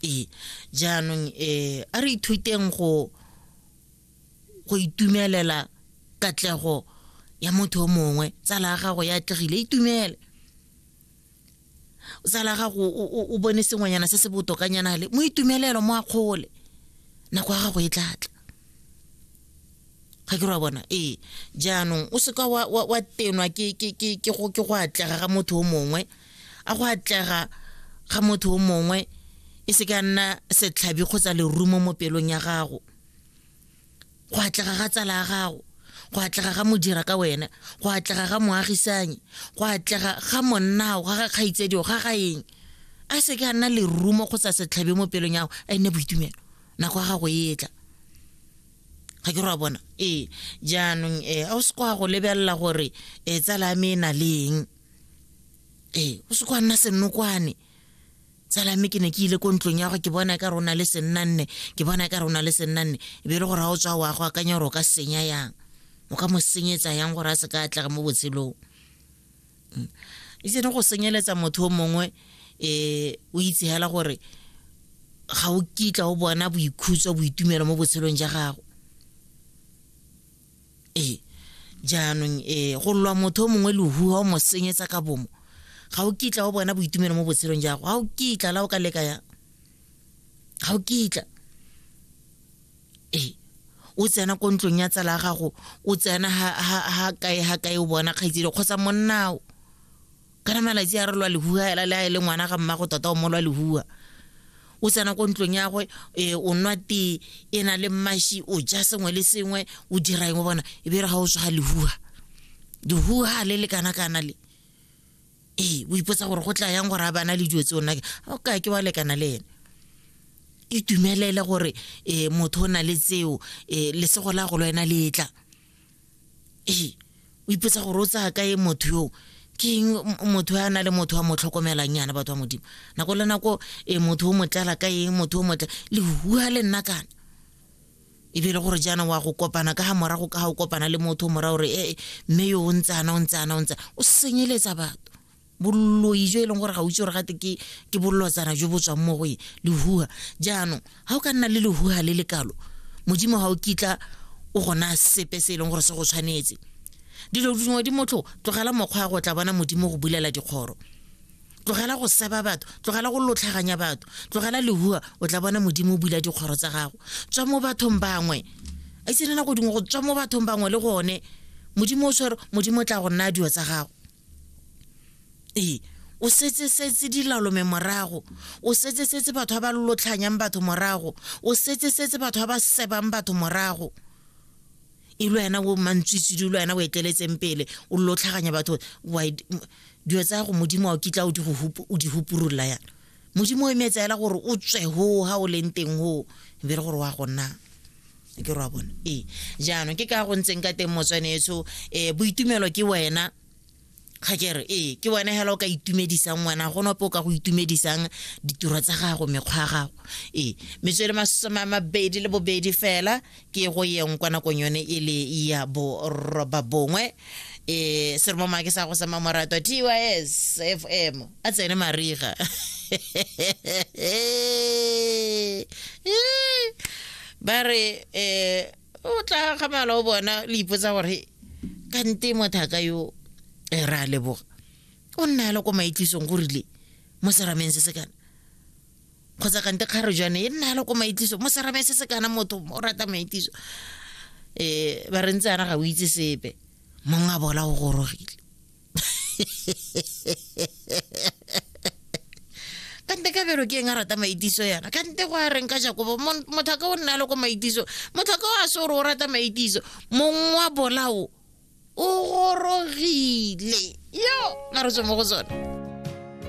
ee jaanong um a re ithuteng go go itumelela katlego ya motho o mongwe tsala ya gago ya atlegile itumele tsala ya gago o bone sengwenyana se se botokanyana le mo itumelelo mo a kgole nako ya gago e tlatla ga ke re wa bona ee jaanong o seka wa tenwa ke go atlega ga motho o mongwe a go atlega ga motho o mongwe e se ka nna setlhabi kgotsa lerumo mo pelong ya gago go atlega ga tsala ya gago go atlega ga modira ka wena go atlega ga moagisanye go atlega ga monnago ga ga kgaitsedio ga ga eng a se ke a nna lerumo kgotsa setlhabi mo pelong yago a e nne boitumelo nako ya gago e tla ga ke ra bona ee jaanong um a o se kwa go lebelela gore um tsala ya me e na le eng ee o se kwa nna senokwane tsala mme ke ne ke ile ko ntlong ya go ke bona ka rona le sennanne ke bona ka rona le sennanne e be e le gore ga o tswa wa go akanya gore o ka senya yang o ka mo senyetsa yang gore a se ka atlega mo botshelong mm. e sene go senyeletsa motho o mongwe um o itse fela gore ga o kitla o bona boikhutso boitumelo mo botshelong ja gago ee jaanong ee go lwa motho o mongwe lehu ga o mo senyetsa ka bomo ga o kitla o bona boitumelo mo botshelong jago ga o kitla la o ka leka ya ga o kitla ee o tsena ko ntlong ya tsala gago o tsena ha kae ha kae o bona kgaitsedi kgotsa monnao kana malatsi a re lwa lehua hela le a e le ngwana ga mmago tota o mo lwa lehua o tsena ko ntlong ya gwe e, o nwa tee e na le mmashi o ja sengwe le sengwe o dira eng o bona e be re ga o swa lehua lehua le le kana-kana le ee o ipotsa gore go tla yang gore a bana le dilo tseo nna o ka ke wa lekana le ene itumelele gore um motho o na le tseo um lesego la go le wena letla ee o ipotsa gore o tsaya kae motho yoo ke eng motho ya na le motho wa mo tlhokomelang yana batho ba modimo nako le nako e motho o motlala ka eng motho o motla le hua le nna kana e be e le gore jaana wa go kopana ka ga morago ka ga o kopana le motho o morago gore ee mme yo o ntse ana o ntse ana o ntse o senyeletsa batho boloi jo e leng gore ga o itse gore gate ke ke bollotsana jo bo tswang mo go e lehuha jaanong ga o ka nna le lehuha le lekalo modimo ga o kitla o gona sepe se e leng gore se go tshwanetse dilo dingwe di motho tlogela mokgwa ya go tla bona modimo go bulela dikgoro tlogela go seba batho tlogela go lotlhaganya batho tlogela lehuha o tla bona modimo o bula dikgoro tsa gago tswa mo bathong bangwe a itse le nako dingwe go tswa mo bathong bangwe le gone modimo o tshwere modimo o tla go nna dilo tsa gago ee o setse setse dilalome morago o setse setse batho ba ba lotlhanyang batho morago o setse setse batho ba ba sebang batho morago e le wena o mantswitsedi le wena o etleletseng pele o lotlhaganya batho dilo tsa go modimo wa kitla o di hupurulla yana modimo o emetsa ela gore o tswe ho ha o leng teng ho be re gore wa go nna ke re wa bona ee jaanong ke ka go ntseng ka teng motswanetso um eh, boitumelo ke wena ga ke re ee ke wena hela o ka itumedisang wena go nope o ka go itumedisang ditiro tsa gago mekgwa ya gago ee metswedi masome a mabedi le bobedi fela ke go yeng kwa nakong yone e le ya boroba bongwe um seromoma ke sa go sama morato tys f m a tsene mariga ba re um o tla gamala o bona le ipotsa gore kante mothaka yo eh, re a leboga o nna le ko maitlisong go rile mo serameng se se kana kgotsa kante kgarejwane e nna le ko maitiso mo serame se se kana motho o rata maitiso eh ba re ntse ana ga o itse sepe mongwe a bola o gorogile kante ka bero ke eng a rata maitiso yana kante go a reng ka jakobo mothaka o nna le ko maitiso mothaka o a se gore o rata maitiso mongwe wa bolao o gorogile yo mare tswe mo go tsone